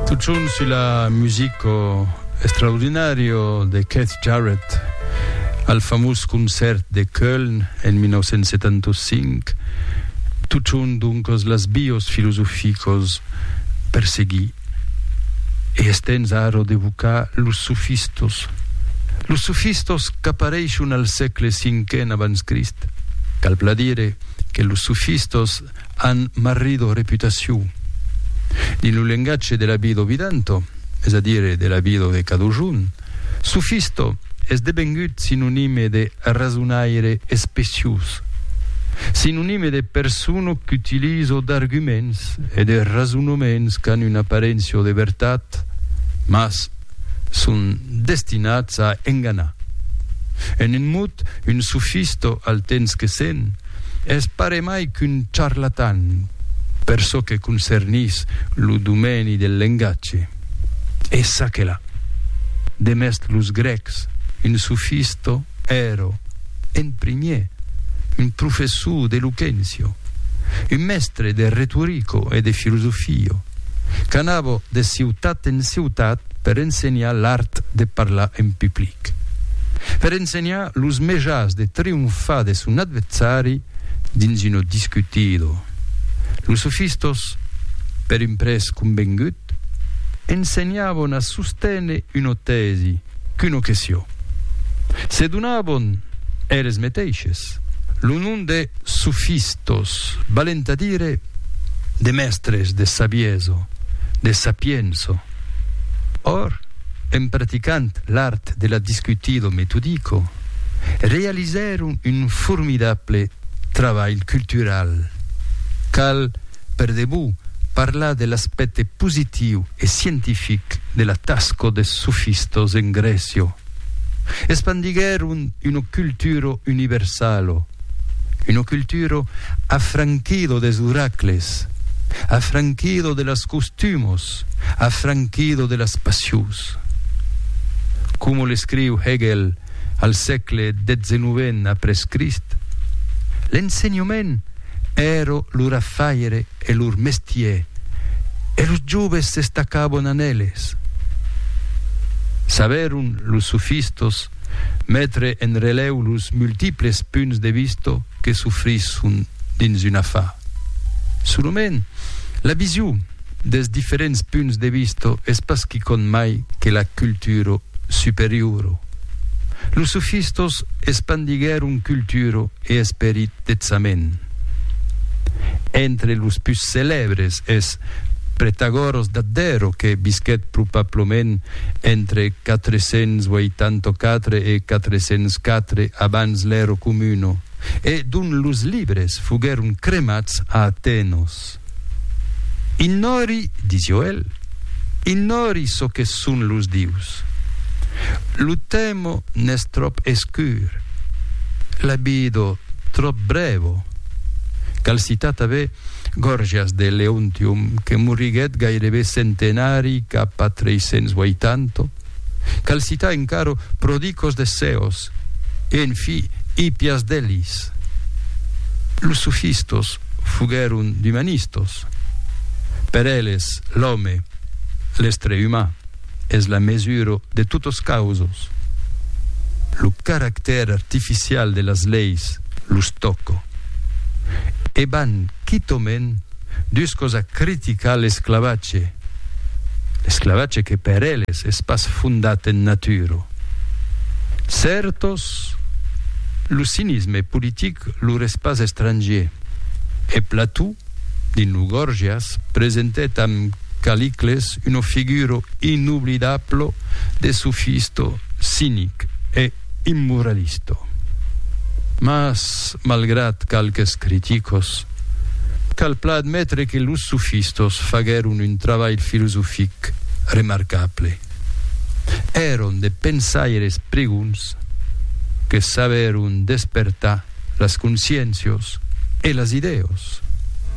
Tot junt sus la musico extraordinario de Keith Jarrett al famós concèrt de Köln en 1975, tot junt doncas las bios filosoficos per seguir e es temps ara d'evocar los sofistos. Los sofistos qu'apareishon al sègle cinquen abans Crist. Cal bla dire que los sofistos an marrido reputaciu dins lo lengatge de l'abido vidento, es a dire de l'abido de cadujun, sufisto es devengut sinonime de rasonaire especiós, sinonime de persona qu'utilizo d'arguments e de rasonaments qu'an una aparéncia de vertat mas son destinats a enganar. En un mot, un sufisto al temps que sent, es paremai qu'un charlatan per çò que concernís lo domèni del lengatge. E ça que la! Demest los grècs, un sofisto ero, en primier, un professor d'eloquencio, un mèstre de retorico e de filosofio, qu'anavo de ciutat en ciutat Per ensenhar l'art de parlar en public. Per ensenhar los mejans de trionfar de son adversari dins una discutida. Los sofistas, per un prètz convengut, ensenhavan a sosténer una tèsi qu'una question. Se donavan eles meteishes lo nom de sofistas, valent a dire de mèstres de sabiesa, de sapiença. Or, en praticant l'art de la discutido metodico, realizèron un formidable trabalh cultural. Cal, per debut, parlar de l'aspècte positiu e scientific de la tasca des sofistas en Grècia. Espandiguèron una cultura universala, una cultura afranquida des oracles, afranquida de las costumas, afranquido de las passions. Coma l'escriu Hegel al sègle xix après Crist, l'ensenhament èra lor afaire e lor mestier e los joves s'estacavan en eles. Sabèron los sofistas metre en relèu los multiples punts de vista que s'ofrisson dins un afar. Solament la vision. des diferents punts de vista es pas quicòm mai que la cultura superiora. Los sofistas espandiguèron cultura e esperit detzament. Entre los pus celèbres es Pretagòras d'Abdèra que visquèt probablament entre 484 e 404 abans l'èra comuna e dont los libres foguèron cremats a Atenas. Ignòri, dizió el, ignòri çò que son los dius. Lo temo n'es tròp escur, la vido tròp brèvo. Cal citar tanben Gòrgias de Leontium, que moriguèt gairebe centenari cap a 380, Cal citar encara Prodicos de Ceos e, en fi, Hippias d'Elis. Los sofistos foguèron d'umanistos. Per eles, l'òme, l'estre uman, es la mesura de totas causas. Lo caractèr artificial de las leis los tòca. E van quitament dus causa criticar l'esclavatge, l'esclavatge que per eles es pas fondat en natura. Certos, lo cinisme politic lor es pas estrangier, e Plató, dins lo Gorgias, presentèt amb Calicles una figura inoblidabla de sofisto cinic e immoralista. Mas, malgrat qualques criticos, cal plan admetre que los sofistas faguèron un trabalh filosofic remarcable. Èron de pensaires pregons que sabèron despertar las consciéncias e las idèas.